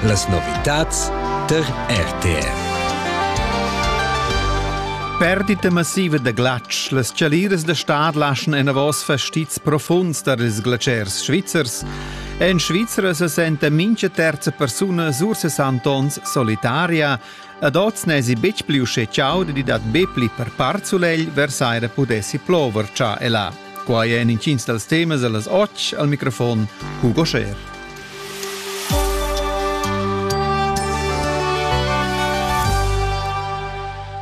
Las novitads tar RTR. Perdita massiva da glatsch. Las chaliras da stad laschan enavos fastizs profunds tar ils glatschers svizzers. En Svizra se senta mincha terza persuna sur 60 ons solitaria. Ad oz n'esi betg pli usché chauda di dat be pli per part sulegl vers aira pudessi plover cha e là. Quai è en intgins dals temas da las otg al microfon Hugo Scher.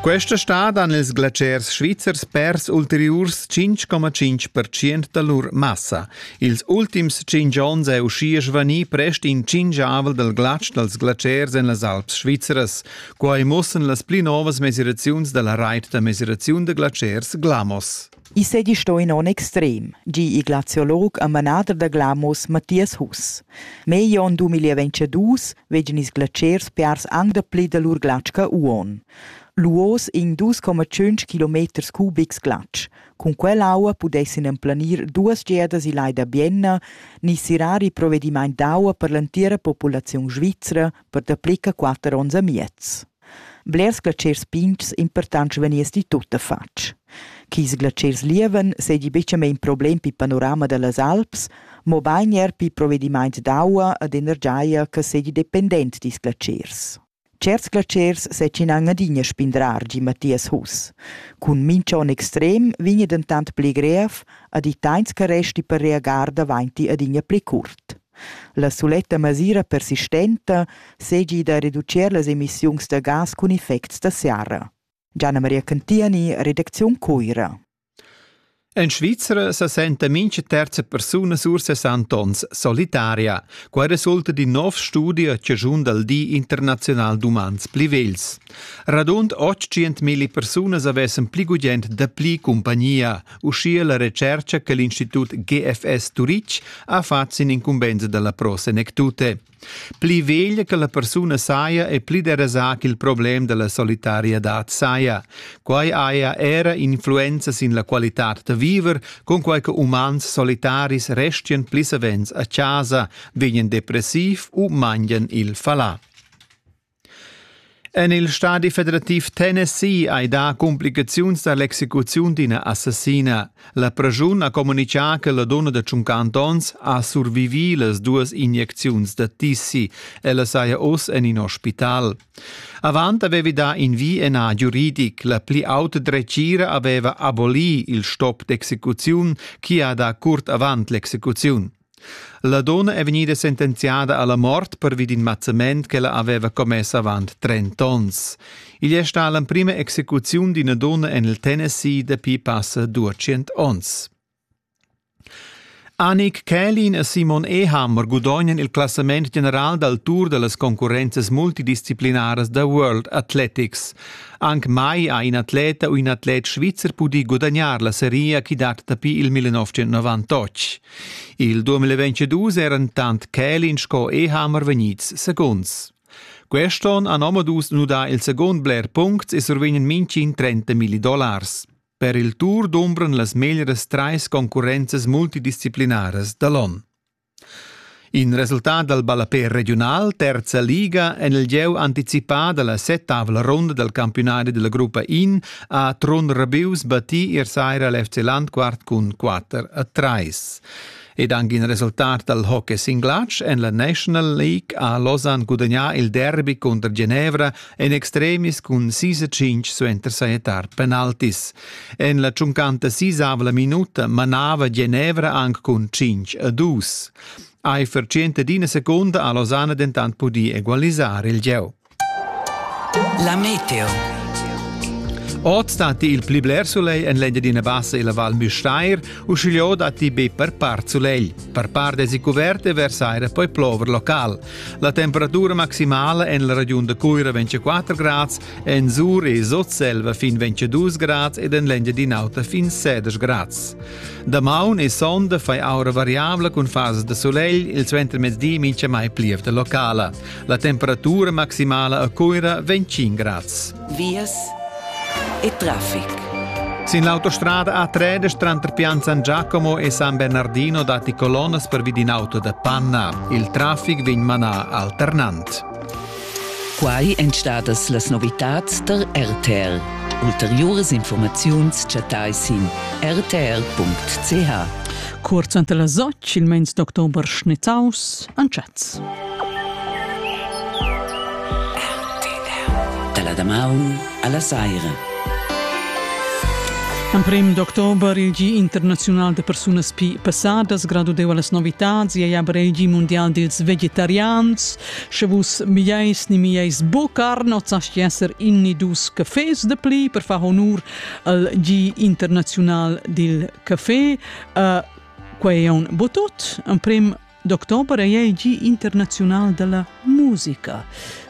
Questa stad han ils glaciers svizzers pers ulteriurs 5,5% da lur massa. Ils ultims 5 onns è uschia svanì prest in cingiavel dal glatsch dals glaciers en las Alps svizzeras. Quai mussan las pli novas mesiraziuns da la rait da mesiraziun da glaciers Glamos. I seigi stau in onn extrem, gi igl archeolog e manader da Glamos Mathias Huss. Megl onn du mil e ventschedus vegin ils glatschers piars aunc dapli da lur glatsch che uonn. Luos in dus coma tschunc kilometers cubics glatsch. Cun quell'aua pudessin emplanir duas giadas il lai da Bienna ni sirar il provedimaint d'aua per l'entira populaziun svizra per dapli che quatter onns e miez. Blers glatschers pigns impurtants vegniss ti tuttafatg. Ch'ils glatschers lievan seigi bucamein problem pil panorama dallas Alps, mobein era pil provedimaint d'aua ed energia che seigi dependent dils glatschers. Certs glatschers setschinan adina spindrar gi Mathias Huss. Cun mincha onn extrem vegni dentant pli grev ed i teins che resti per reagar davainti adina pli curt. La suletta masira persistenta seigi da reducir las emissiuns da gas cun effects da serra. Gianna Maria Cantiani, redacziun Cuira. En Svizra sa senta mincha terza persuna sur 60 ons solitaria. Quai resulta d'in nov studi a ciaschun dal Di internazional d'umans pli vegls. Radund 800.000 persunas avessan pli gugent dapli cumpagnia, uschia la retscherca che l'Institut GFS Turitg ha fatg sin incumbensa dalla Pro Senectute. Pli veglia che la persuna saja e pli derasà ch'il problem dalla solitariadad saja. Quai haja era influenza sin la qualitad da viver, cunquai che umans solitaris restian pli savens a casa, vegnan depressiv u mangian il falà. En il stadi federativ Tennessee hai dà cumplicaziuns da l'execuziun d'ina assassina. La praschun ha communitgà che la donna da 50 onns ha survivì las duas injecziuns da tissi. Ella saja oz en in ospital. Avant avevi dà in vi e nà giuridic. La pli auta dretgira aveva abolì il stop d'execuziun, chi ha dà curt avant l'execuziun. La donna è vegnida sentenziada alla mort pervi d'in mazzament ch'ella aveva commess avant trent'onns. Igl è stà l'emprima execuziun d'ina donna en il Tennessee dapi passa duecent onns. Anik Kählin e Simon Ehhammer gudognan il classament general dal Tour da las concurrenzas multidisciplinaras da World Athletics. Anc mai ha in atleta u in atlet svizzer pudì gudagnar la seria chi dat dapi il 1998. Il 2022 eran tant Kälin sco Ehammer vegnids segunds. Quest'on han omadus nudà il segund bler puncts e survegnen mintgin 30 milli dollars. Per il Tour dumbran las meglieras trais concurrenzas multidisciplinaras da l'on. In resultat dal ballapè regiunal terza liga en il gieu anticipà da la settavla runda dal campiunadi della gruppa in ha Trun Rabius battì ier saira l'FC Landquart cun 4 a 3. Ed anche in resultat dal hockey singlatsch en la National League ha Lausanne gudagnà il derby contro Genevra en extremis cun 6-5 suenter sajettar penaltis. En la tschuncanta sisavla minuta manava Genevra anc cun 5 a 2. Eifer d'ina secunda ha Lausanne dentant pudì egualisar il gieu. La meteo. Oz datti il pli bler sulegl en l'Engiadina Bassa e la Val Müstair, uschigliò datti be per part sulegl. Per part èsi cuvert e vers aira poi plover local. La temperatura maximala en la regiun da Cuira 24 grads, En Sur e Sotselva fin 22 grad ed en l'Engiadin'Auta fin 16 grads. Damaun e sonda fai aura variabla cun fases da solegl, il suentermezdi mincha mai plievda locala. La temperatura maximala a Coira 25 grads. Vias e traffic. Sin l'autostrada A3 tranter Pianzan Giacomo e San Bernardino datti colonnas per vid in auto da panna. Il traffic vegn manà alternant. Quai èn stadas las novitads tar RTR. Ulteriuras informaziuns chattai sin rtr.ch. Cuort suenter las otg il meins d'october schnitaus antschats. Dalla damaun alla saira. Emprem d'october il Gi internaziunal da persunas pi passadas gradudeva las novitads e aber il Gi mondial dils vegetarians Sche vus mieis ni mieis bucar not sa esser in ni dus cafés de pli per far honur al G internazional dil café. Uh, quei è un botut. Ein prim d'october è il G internazional della musica.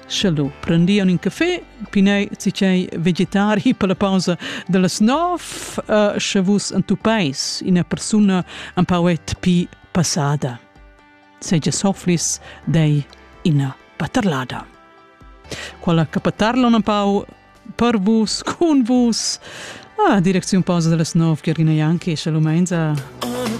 Sche lu prendian in café, pinei cicei vegetari per la pausa dellas nov, uh, sche vus entupais ina persona un pauet pi passada. seigi sofflis dei ina paterlada. Quella capatarla un pau per vus, cun vus, ah, direcziun pausa delle snof, Giorgina Janki, shalom enza.